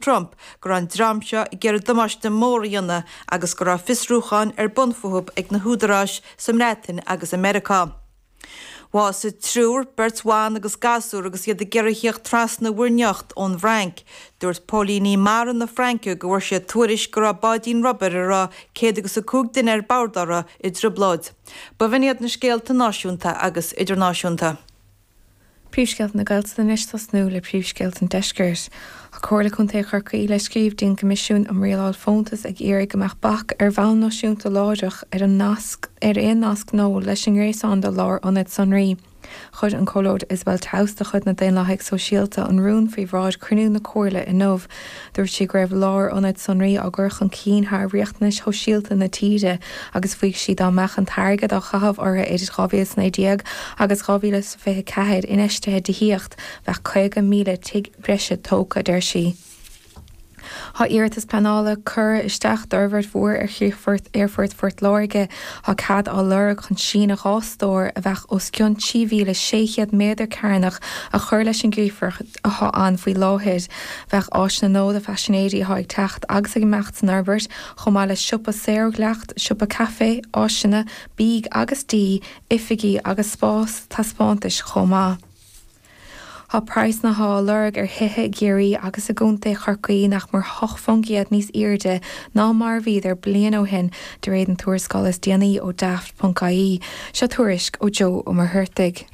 Trump go raibh an dream seo ag iarraidh damáiste mór a dhéanamh agus go raibh fiosrúcháin ar bun fúthu ag na húdaráis sa mBreatain agus i Meiriceá. Bhásaigh triúr, beirt bhan agus gasúr agus iad ag iarraidh theacht trasna Mhuir nIocht ón bhFrainc. Dúirt póilíní mara na Fraince go bhfuair siad tuairisc go raibh báidín rubair a raibh céad agus a cúig duine ar bord orthu i dtrioblóid. B'in iad na scéalta náisiúnta agus idirnáisiúnta. Príomhscéalta na Gaeltachta anois ag tosnú le príomhscéalta an Deiscirt. Tá Comhairle Contae Chorcaí le scríobh dtí'n gCoimisiún um Rialáil Fóntas ag iarraidh go mbeadh bac, ar bhonn náisiúnta láithreach, ar an nasc, ar aon nasc nua leis an ngréasán do lár-ionaid sonraí. Chuir an Comhairleoir Isabel Towse de chuid na Daonlathaigh Sóisialta an rún faoi bhráid chruinniú na Comhairle inniu. Dúirt sí go raibh lárionad sonraí á gcur chun cinn thar riachtanais shóisialta na tíre agus mhaígh sí dá mbeadh an t-airgead a caitheadh orthu idir 2019 agus 2024 infheistithe i dtithíocht, bheadh 50,000 tigh breise tógtha, a deir sí. Tá iarratas pleanála curtha isteach d'fhorbhairt mhór ar chríochfort Aerfort Phort Láirge. Tá cead á lorg chun síneadh dhá stór, a bheadh os cionn 3,600 méadar cearnach, a chur leis an gcríochfort. atá ann faoi láthair. Bheadh áiseanna nua do phaisinéirí atá ag teacht agus ag imeacht san fhorbairt, chomh maith le siopa saor ó dhleacht, siopa caife, áiseanna bídh agus dí, oifigí agus spás taispeántais chomh maith. Tá praghsanna atá á lorg ar thithe i gCiarraí agus i gContae Chorcaí nach mór 8 faoin gcéad níos airde ná mar a bhíodar bliain ó shin, de réir an tuarascáil is déanaí ó Daft. ie, seo tuairisc ó Joe Ó Muircheartaigh.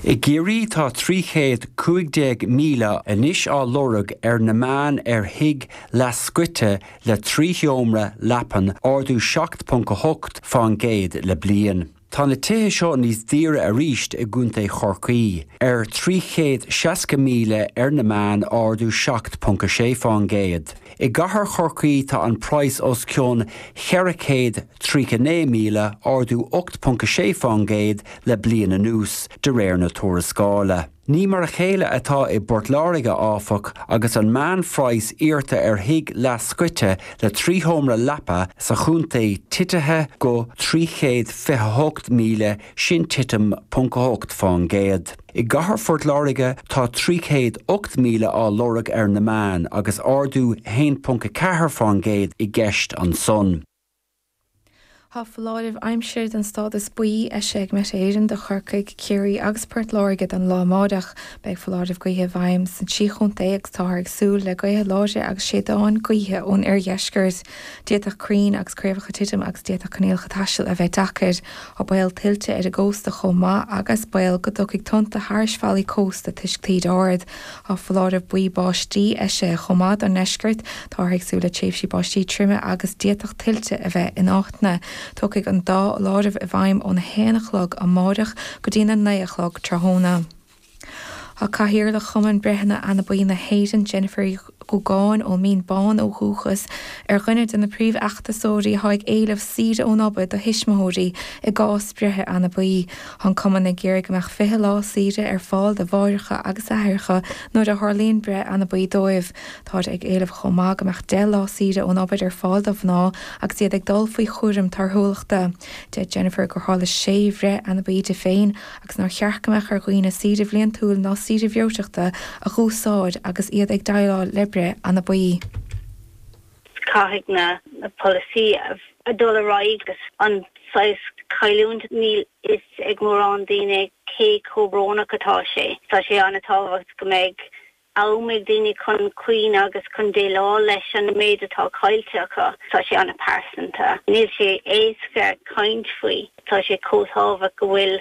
I gCiarraí tá 315,000 anois á lorg ar an meán ar thigh leath scoite le trí sheomra leapan, ardú 7.8% le bliain. Tá na tithe seo níos daoire arís i gContae Chorcaí, ar 360,000 ar an meán, ardú 7.6%. I gcathair Chorcaí tá an praghas os cionn 400 39,000, ardú 8.6% le bliain anuas, de réir na tuarascála. Ní mar a chéile atá i bPort Láirge, áfach, agus an meánphraghas iarrta ar thigh leathscoite le trí sheomra leapa sa chontae titithe go 328,000, sin titim 0.8%. I gcathair Phort Láirge tá 308,000 á lorg ar an meán, agus ardú 1.4% i gceist ansan. Tá foláireamh aimsire den stádas buí eisithe ag Met Éireann do Chorcaigh, Ciarraí agus Port Láirge don lá amáireach. Beidh foláireamh gaoithe i bhfeidhm sna trí chontae agus táthar ag súil le gaotha láidre agus séideáin gaoithe ón oirdheisceart. D'fhéadfadh crainn agus craobhacha titim agus d'fhéadfadh coinníollacha taistil a bheith deacair. Tá baol tuilte ar an gcósta chomh maith agus baol go dtiocfaidh tonnta thairis fallaí cósta toisc taoide ard. Tá foláireamh buí báistí eisithe chomh maith don ndeisceart. Táthar ag súil le tréimhsí báistí troime agus d'fhéadfadh tuilte a bheith in áiteanna. Tiocfaidh an dá fholáireamh i bhfeidhm óna haon a chlog amáireach go dtína naoi a chlog tráthnóna. Tá Cathaoirleach Chumann Breitheanna Anabaí na hÉireann, Jennifer Uí. Dhúgáin, ón Mín Bán ó dhúchas, ar dhuine de na príomhfheachtasóirí atá ag éileamh saoire ón obair do thuismitheoirí i gcás breithe anabaí. Tá an cumann ag iarraidh go mbeadh 20 lá saoire ar fáil do mháithreacha agus aithreacha nuair a tharlaíonn breith anabaí dóibh. Táthar ag éileamh chomh maith go mbeadh 10 lá saoire ón obair ar fáil do mhná agus iad ag dul faoi chúram torthúlachta. Deir Jennifer gur tharla sé bhreith anabaí di féin agus nár cheart go mbeadh ar dhaoine saoire bhliantúil ná saoire bhreoiteachta a dh'úsáid agus iad ag déileáil le breith anabaí. Caithfidh na polasaí a dhul ar aghaidh agus an saghas cailliúint, níl fhios ag mórán daoine cé chomh brónach atá sé. Tá sé an-tábhacht go mbeidh am ag daoine chun caoineadh agus chun déileáil leis an méid atá caillte acu. Tá sé an-pearsanta. Níl sé éasca caint faoi. Tá sé chomh tábhacht go bhfuil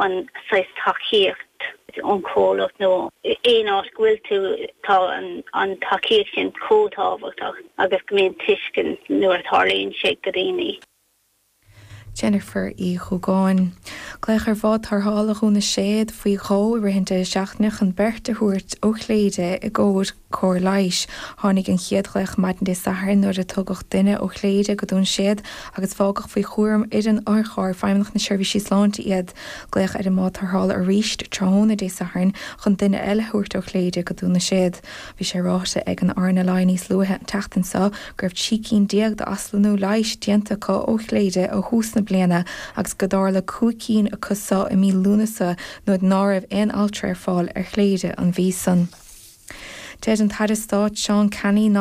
an saghas tacaíocht ón chomhlacht nó aon áit go bhfuil tú, tá an tacaíocht sin chomh tábhachtach agus go mbíonn tuiscint nuair a tharlaíonn sé go daoine. Jennifer Uí Dhúgáin. Glaodh ar Bhád Tarrthála Dhún na Séad faoi dhó i rith an deireadh seachtaine chun beirt a thabhairt ó Chléire i gcomhair cóir leighis. Tháinig an chéad ghlaoch maidin Dé Sathairn nuair a tugadh duine ó Chléire go Dún na Séad agus fágadh faoi chúram fhoireann Otharcharr Feidhmeannacht na Seirbhísí Sláinte iad. Glaodh ar an mBád Tarrthála arís tráthnóna Dé Sathairn chun duine eile a thabhairt ó Chléire go Dún na Séad. Bhí sé ráite ag an RNLI níos luaithe an tseachtain seo go raibh trí cinn déag d'aslonnú leighis déanta acu ó Chléire ó thús na bliana agus go dtarla cúig cinn acu seo i mí Lúnasa nuair ná raibh aon altra ar fáil ar Chléire an mhí san. Deir an tAire Stáit Seán Canney,